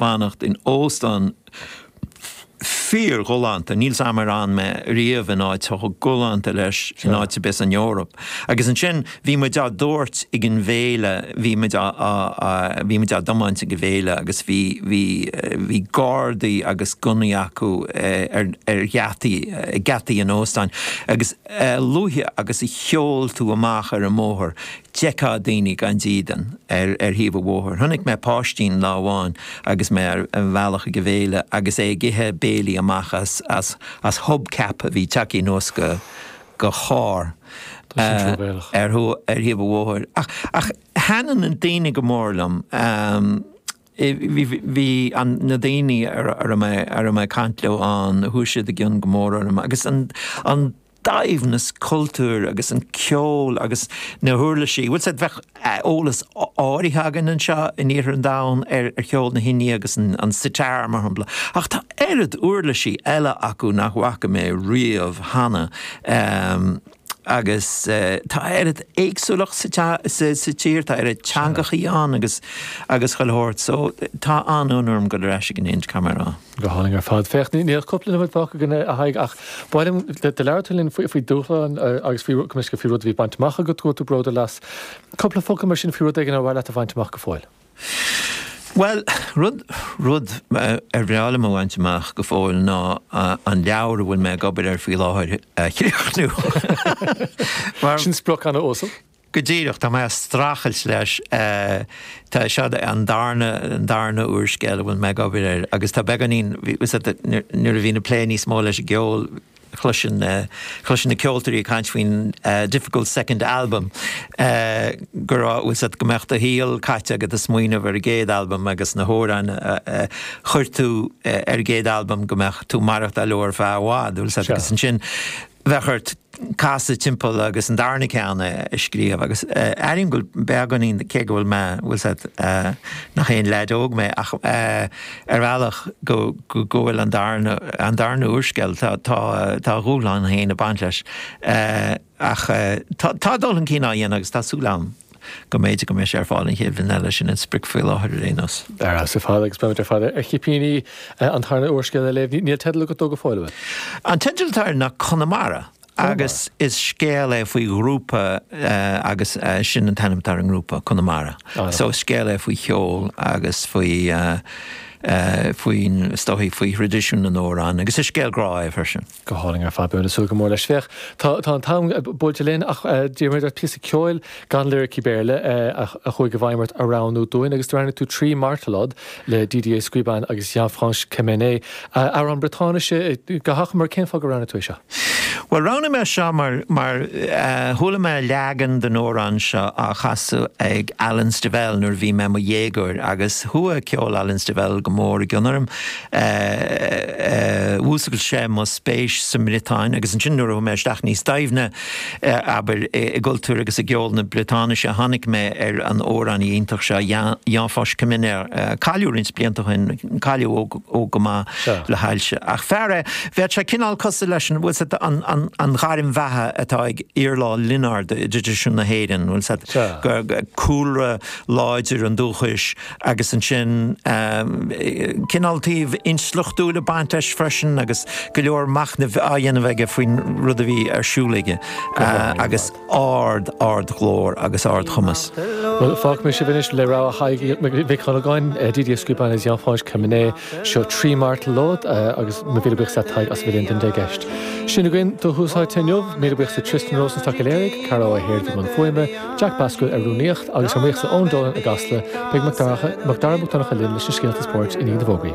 fanacht in óstán fíorghalánta, níl 's 'am ar fhan mé riamh in áit chomh galánta leis in áit ar bith san Eoraip, agus ansin bhí muid dár dtabhairt ag an bhféile, bhí muid á, á, á, bhí muid dár dtiomáint ag an bhféile agus bhí, bhí, bhí gardaí agus gunnaí acu ar, ar gheataí, ag geataí an óstáin agus a luaithe agus a sheol tú amach ar an mbóthar, d'fheicfeá daoine gan dídean ar thaobh an bhóthair. Chonaic mé páistín lá amháin agus mé ar mo bhealach chuig an bhféile agus é ag ithe béile amach as hubcap a bhí tagtha anuas de charr ar thaobh an bhóthair. Ach thaitin na daoine go mór liom, bhí na daoine a raibh mé ag caint leo ann, chuaigh siad i gcionn go mór orm agus an. saibhreas cultúir agus an ceol agus na huirlisí, bhfuil 's ad, bheadh eolas áirithe againn anseo in iarthar an domhain ar cheol na hInde agus an sitar, mar shampla, ach tá oiread uirlisí eile acu nach bhfaca mé riamh cheana agus tá oiread éagsúlacht sa tír, tá oiread teangachaí ann agus chuile shórt, so tá an-fhonn orm dul ar ais ag an Ind, caithfidh mé a rá. Go hálainn ar fad. Féach, níl ach cúpla nóiméad fágtha againn, a Thaidhg, ach ba mhaith liom, do labhair tú linn faoi dhúshláin agus faoi, cuimsitheach, faoi rud a bhí bainte amach agat, go bhfuil tú bródúil as. Cúpla focal mar sin faoi rud éigin ar mhaith leat a bhaint amach go fóill? Bhuel, rud, rud ar bhreá liom a bhaint amach go fóill ná an leabhar a bhfuil mé ag obair air faoi láthair a chríochnú. Sin sprioc ann, 's ó sea. Go díreach, tá mé ag streachailt leis, seo an darna úrscéal a bhfuil mé ag obair air agus tá beagáinín, nuair a bhínn ag plé níos mó leis an gceol, chloisfinn na ceoltóirí ag caint faoin difficult second album, go raibh, bhfuil 's ad, go mbeadh do shaol caite agat ag smaoineamh ar an gcéad albam agus na hamhráin a chuir tú ar an gcéad albam, go mbeadh tú ag maireachtáil leo ar feadh i bhfad, bhfuil 's ad, agus ansin, bheadh ort casadh timpeall agus an darna ceann a scríobh agus airím go bhfuil beagáinín, cé go bhfuil mé, bhfuil 's ad, nach aon leaid óg mé ach ar bhealach go bhfuil an darna, an darna úrscéal, tá, tá, tá a dhúshlán féin ag baint leis ach tá, tá dul chun cinn á dhéanamh agus tá súil agam. go mb'fhéidir go mbeidh sé ar fáil an chéad bhliain eile, sin an sprioc faoi láthair ar aon nós. Ar fheabhas ar fad agus beimid ar fad ar chipíní an tarna úrscéal a léamh. Níl teideal agat dó go fóill, an bhfuil? An teideal atá air ná Conamara agus is scéal é faoi ghrúpa agus sin an t-ainm atá ar an ngrúpa, Conamara. So is scéal é faoi cheol agus faoi, faoi, is dóigh, faoi thraidisiún na n-amhrán agus is scéal grá é freisin. Go hálainn ar fad, beimid ag súil go mór leis. Féach, tá an t-am buailte linn ach d'iarr muid ort píosa ceoil gan liricí Béarla a chuaigh i bhfeidhm ort a roghnú dúinn agus do roghnaigh tú Tri Martolod le Didier Squiban agus Yann-Fañch Kemener, amhrán Briotáinise. Go hachomair, cén fáth gur roghnaigh tú é seo? Bhuel, roghnaigh mé seo mar chuala mé leagan den amhrán seo á chasadh ag Alan Stivell nuair a bhí mé i mo dhéagóir agus chuaigh ceol Alan Stivell go mór i gcion orm. Mhúscail sé mo spéis sa mBriotáin agus ansin nuair a chuaigh mé isteach níos doimhne, abair, i gcultúr agus i gceol na Briotáinise, tháinig mé ar an amhránaí iontach seo, Yann-Fañch Kemener. Cailleadh roinnt blianta ó shin, cailleadh óg go maith le hailse. Ach fear é, bheadh sé cineál cosúil leis an, bhfuil a fhios agat, an ghairm bheatha atá ag Iarla Ó Lionáird i dtraidisiún na hÉireann, bhfuil a fhios agat, cúlra láidir an dúchais, agus ansin cineál taobh intleachtúil ag baint leis freisin agus go leor machnaimh á dhéanamh aige faoin rud a bhí ar siúl aige agus ard, ardghlór agus ardchumas. Bhuel, fágfaidh mé sibh anois le rogha Thaidhg Mhic Dhonnagáin, Didier Squiban is Yann-Fañch Kemener. Seo Tri Martolod agus mo mhíle buíochas leat a Thaidhg as a bheith linn don deich gceist. Sin againn do Thús Áite inniu. Míle buíochas le Tristan Rosenstock a léirigh, Cara Ó hAird i mbun fuaime, Jack Baskerville ar rúnaíocht agus ár mbuíochas le Eoin Dolan i gCasla. Beidh Mac Dara Mac Donncha linn leis na scéalta spóirt i ndiaidh na bhfógraí.